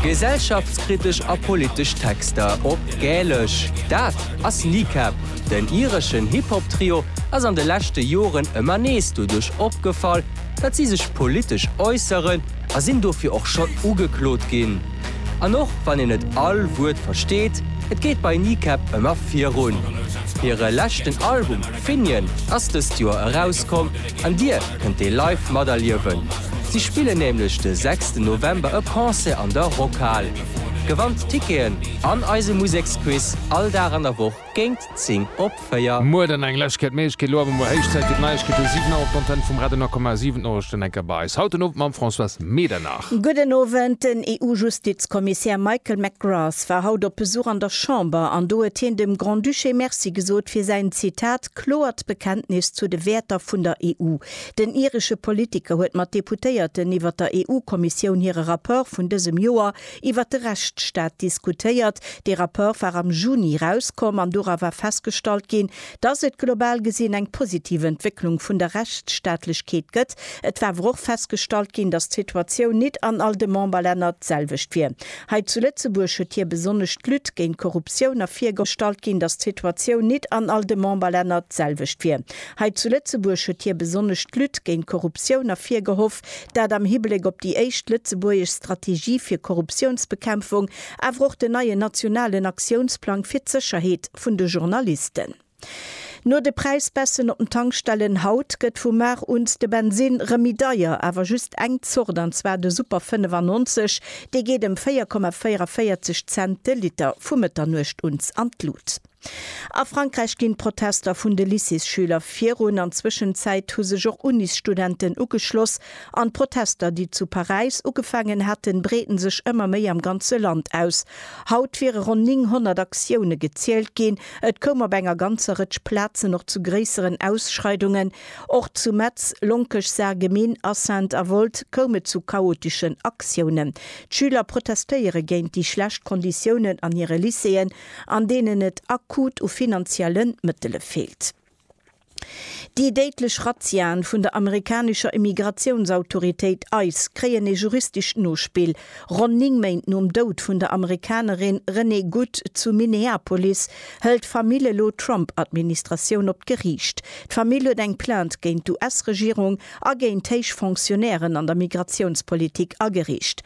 Gesellschaftskritesch a politesch Texter op Gälesch, dat ass Kneecap. Den ireschen Hip-Hop-Trio ass an de leschte Joren ëmmer nees doduerch opgefall, datt si sech politesch äusseren a sinn dofir och schonn ugeklot ginn. An och wann een net all Wuert versteet, et geet bei Kneecap ëmmer virun. Hire leschten Album Finian ass dëst Joer erauskomm. An Dir kënnt dee live materliewen. Si spillen nämlech de sechsten November e Concert an der Rockhal. Gewannt d'Ticketen an eise Museksquiz all Dag an der Woch géint 10 op 4. Muer dann eng lech gett meech, gett lo awer muer héich Zäit fir d'Neiegkeeten um 7 Auer op d'Antenn vum Radio Nakoma. 7 Norichten enker bei eis haut den Owend mam Françoise Medernach. Gudden Owend. Den EU-Justizkommissär Michael McGrath war haut op Besuch an der Chamber an do huet hien dem Grand-Duché Merci gesot fir säin, Zitat, Kloert Bekenntnis zu de Wäerter vun der EU. Den iresche Politiker huet mat Deputéierten iwwer der EU-Kommissioun hire Rapport vun dësem Joer iwwer de Rechtsstaat diskutéiert. Dee Rapport war am Juni erauskomm an dora war festgestallt ginn, dass et global gesinn eng positiv Entwécklung vun der Rechtsstaatlechkeet gëtt. Et war awer och festgestallt ginn, dass d'Situatioun nit an all de Memberlänner d'selwecht wier. Hei zu Lëtzebuerg huet hie besonnesch d'Lutte géint d'Korruptioun ervirgestallt ginn, datt d'Situatioun nit an all de Memberlänner d'selwecht wier. Hei zu Lëtzebuerg huet hie besonnesch d'Lutte géint d'Korruptioun ervirgehoff, dat am Hibléck op déi éischt lëtzebuergesch Strategie fir Korruptiounsbekämpfung, awer och den neien nationalen Aktiounsplang fir d'Sécherheet vun de Journalisten. No de Präisbässen op den Tankstellen haut gëtt vu mar un de Bensinn rëm méi deier, awer just eng Zort, an zwar de Super 95. Dee geet ëm 4,44 Cent de Liter vu Mëtternuecht uns an d'Lut. A Frankräich ginn d'Protester vun de Lycéesschüler virun. An Zwëschenzäit hu sech och Unisstudenten ugeschloss an d'Protester, déi zu Paräis ugefaangen haten, breeden sech ëmmer méi am ganze Land aus. Haut wiere ronn 900 Aktioune gezielt ginn, Et koum op enger ganzer Rëtsch Plazen och zu gréisseren Ausschreidungen. Och zu Metz, Lonkech, Sarreguemines, Assaintes a Woltz koum et zu chaoteschen Aktiounen. D'Schüler protestéiere géint déi schlecht Konditiounen an hire Lycéeën, an deenen et akut u finanziellen Mëttele feelt. Déi déidlech Razziaen vun der amerikanescher Immigratiounsautoritéit ice kréien ee juristescht Nospill. Ronn 9 Méint nom Doud vun der Amerikanerin Renee Good zu Minneapolis hëlt d'Famill elo d'Trump-Administratioun op d'Geriicht. D'Famill huet eng Plainte géint d'US-Regierung a géint héich Fonctionnairen an der Migratiounspolitik ageriicht.